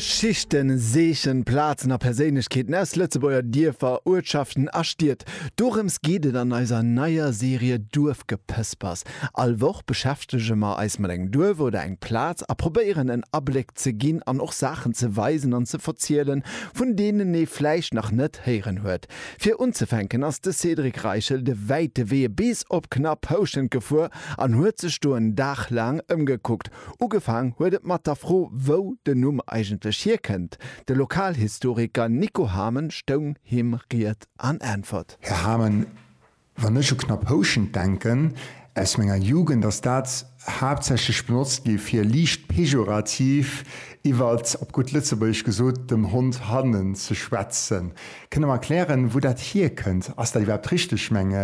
Schichten, Seechen, Plazen a Perséinlechkeeten aus Lëtzebuerger Dierfer, Uertschaften a Stied. Dorëms geet et an eiser neier Serie Duerfgepëspers. All Woch beschäftege mer eis mat engem Duerf oder eng Plaz a probéieren en Abléck ze ginn an och Saachen ze weisen an ze verzielen, vun deenen ee vläicht nach net héieren huet. Fir unzefänken ass de Cédric Reichel de wäite Wee bis op knapp Houschent gefuer an huet sech do en Dag laang ëmgekuckt. Ugefaang huet et mat der Fro, wou den Numm eigentlech hierkënnt. De Lokalhistoriker Nico Hamen stoung him Ried an Äntwert. Här Hamen, wann ech u Knapphouschent denken, aus menger Jugend ass dat haaptsächlech benotzt gi fir liicht pejorativ iwwer, op gutt Lëtzebuergesch gesot, dem Hond hannen ze schwätzen. Kënnt Der mer erklären, wou dat hierkënnt? Ass dat iwwerhaapt richteg, meng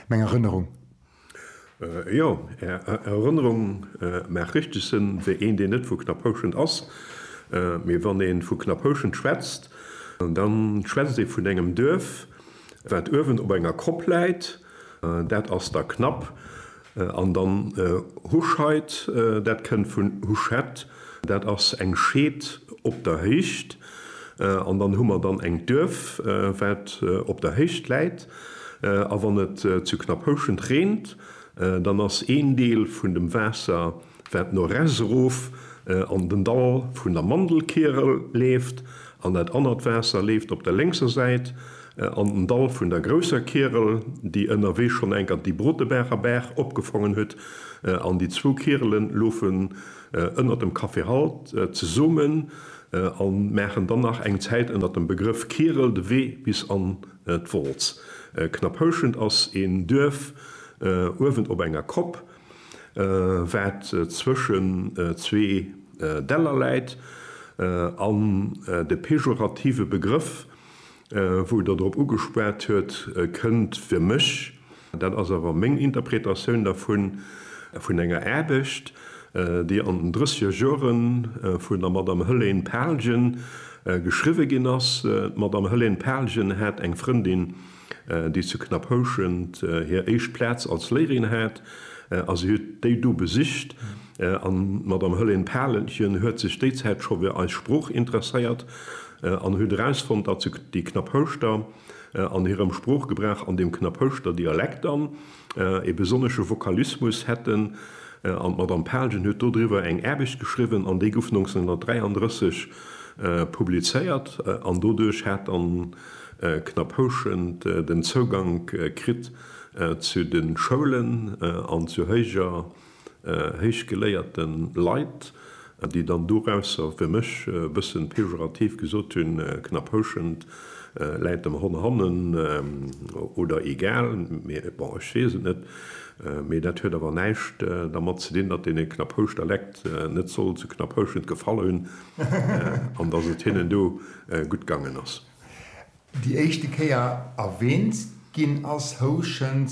Erënnerung? Jo, Är Erënnerung maacht richteg Sënn, wéi een, deen net vu Knapphouschent ass. Mee wann ee vu Knapphouschent schwätzt, da schwätzt ee vun engem Duerf, wat uewen op enger Kopp läit, dat ass da Knapp. An dann Huscheid, dat kënnt vun Huschett, dat ass eng Scheed op der Héicht. An dann hu mer dann eng Duerf, wat op der Héicht läit. A wann et zu Knapphouschent reent, dann ass een Deel vun dem Waasser, wat no res erof an den Dall vun der Mandelkierel leeft, an dat anert Waasser leeft op der lénkser Säit an den Dall vun der grousser Kierel, déi ënnerwee schonn enker déi Brotebaacher Baach opgefongen huet. An déi zwou Kierele lofe ënnert dem Café Halt zesummen a maachen dann nach eng Zäit ënnert dem Begrëff Kierel de Wee bis an d'Wolz. Knapphouschent ass een Duerf uewen op enger Kopp, wat zwëschen zwee Däller läit an de pejorative Begrëff Wou Der drop ugespat huet, kënnt fir mech, dat ass awer meng Interpretatioun dervun, vun enger Aarbecht, déi an den drëssiger Jore vun der Madame Hëlène Palgen geschriwwe ginn ass. D'Madame Hëlène Palgen hat eng Frëndin, déi zu Knapphouschent hir éischt Plaz als Léierin hat, a si huet déi do besicht. An d'Madame Hëllén Paalchen huet sech déi Zäit scho fir eis Sprooch interesséiert an huet erausfonnt, datt se déi Knapphouschter an hirem Sproochgebrauch an dem Knapphouschter Dialekt an ee besonnesche Vokalismus hätten. An d'Madame Paalchen huet dodriwwer eng Aarbecht geschriwwen an déi gouf 1933 publizéiert an doduerch hat dann Knapphouschen den Zougank kritt zu de Schoulen an zu héijer héichgeléierte Leit, déi dann dorausser fir mech e bëssen pejorativ gesot hunn, Knaphouschent läit dem Hon hannen oder egal, mee bon, ech weess et net. Mee dat huet awer näischt dermat ze dinn, datt dee Knaphouschter Lekt net soll zu Knaphouschent gefall hunn an datt et hinnen do gutt gaangen ass. Déi éischte Kéier erwähnt ginn ass Houschent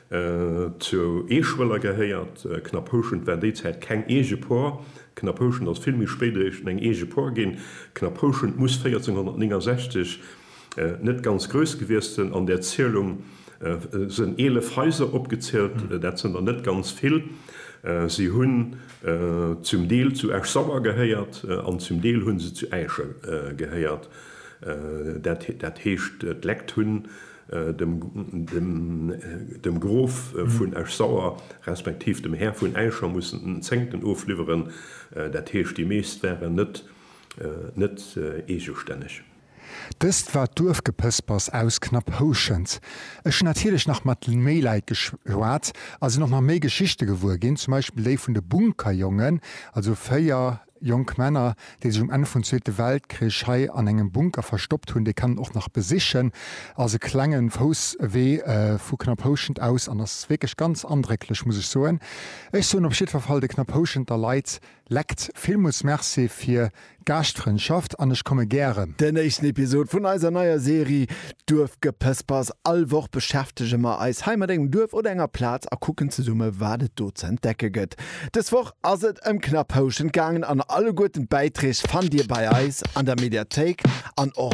Zu Eeschwëller gehéiert Knapphouschent war déi Zäit keng eege Por. Knapphouschent ass vill méi spéit eréischt eng eege Por ginn. Knapphouschent muss 1469 net ganz grouss gewiesst sënn. An där Zielung sënn 11 Haiser opgezielt. Dat sënn der net ganz vill. Si hunn zum Deel zu Esch-Sauer gehéiert an zum Deel hunn se zu Äischen gehéiert. Dat heescht d'Lekt hunn dem Grof vun Esch-Sauer, respektiv dem Här vun Äischer mussen den Zéngten ofliwweren, dat heescht, déi meescht waren net net eegestänneg. Dëst war d'Duerfgepëspers aus Knapphouschent. Ech hunn natierlech nach mat méi Leit geschwat a sinn och nach méi Geschichte gewuer ginn, zum Beispill déi vun de Bunkerjongen, also 4 Jonk Männer, déi sech um Enn vun Zweete Weltkrich hei an engem Bunker verstoppt hunn, déi kann een och nach besichen. Ass e klenge Fousswee vu Knapphouschent aus an ass wierklech ganz andrécklech, muss ech soen. Ech soen op jiddwer Fall de Knaphouschenter Leit lekt villmools Merci fir d'Gaaschtfrëndschaft an ech komme gären. Den éischten Episod vun eiser neier Serie Duerfgepëspers. All Woch beschäftege mer eis hei mat engem Duerf oder enger Plaz a kucken zesumme, wat et do ze entdecke gëtt. Dës Woch ass et ëm knapp Houschent gaangen an alleguerten d'Bäitreeg fannt Dir bei eis an der Mediathéik an och